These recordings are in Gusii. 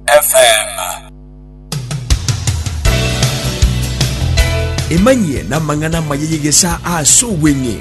FM. Emanyie namang'ana amaya y'egesaa ase obweng'e.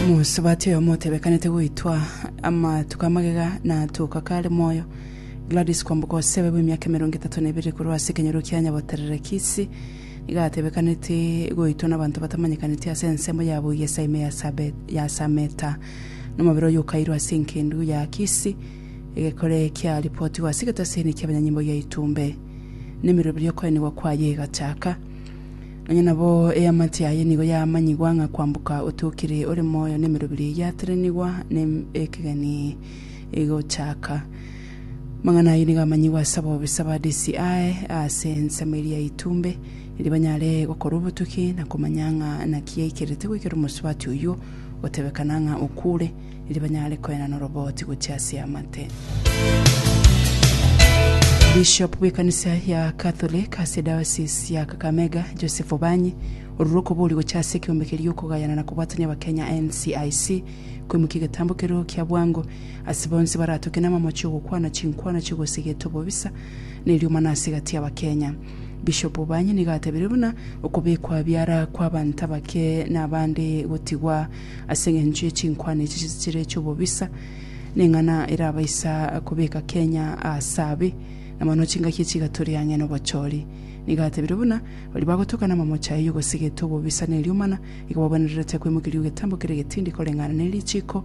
Mosubati oyo motebekanete goitwa amatuko amagega na atoka kare moyo Gladys Kwamboka osebe bw'emiaka emerongo etato na ebere korwa ase ekenyoro kia Nyaboterere Kisii nigo atebekanete goitwa nabanto batamanyekaneti ase ensemo yabo Igesa ime ya Sabe- ya Sameta nomobere oyio okairwa ase engendu ya Akisi, egekore kia ripotigwa ase egetaseni ki'abanyanyimbo gia Itumbe, na emeroberio y'okoenigwa kwaye egachaka. Nonya nabo eamate yaye nigo yamanyigwa ng'a kwamboka otiokire ore moyo na emeroberio eyio yaterenigwa na ekegeni egochaka. Amang'ana ayio nigo amanyigwa ase abobisa ba DCI ase ensemo eria ya Itumbe, erio banyare gokorwa obotuki na komanya ng'a naki yaikerete goikera omosubati oyio, gotebekana ng'a okuure, erio banyare koena noroboti gochia ase amate. Bishop bw'ekanisa ya Catholic ase diocese ya Kakamega, Joseph Obanyi, orure okobori gocha ase ekeombe keria okogayana na kobwatania Abakenya NCIC, kwemukia egetambo kerio kia bwango ase bonsi baratoke namamo chi'ogokwana chinkwana chigosegete obobisa na eriomana ase egati y'Abakenya. Bishopu banye nigo atebirie buna okobekwa biara kw'abanto abake nabande gotigwa ase engencho ye chinkwana echi chire chi'obobisa neng'ana erabaisa kobeka Kenya as'abe na mono chingaki echi igaturi ang'e nobochori. Nigo atebirie buna baria bagotoka namamoche aye y'ogosigete obobisa neriomana igo babwenererete kwemokia ri'ogetambo kere getindi koreng'ana nerichiko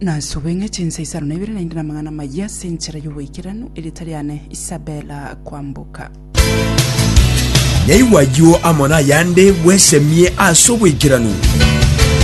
Nasobe ng'a chinsa isano na ibere naende namang'ana amayia ase enchera y'oboikeranu, erieta riane Isabella Kwamboka. Naigwa ayio amo nayande bwesemie ase oboikeranu.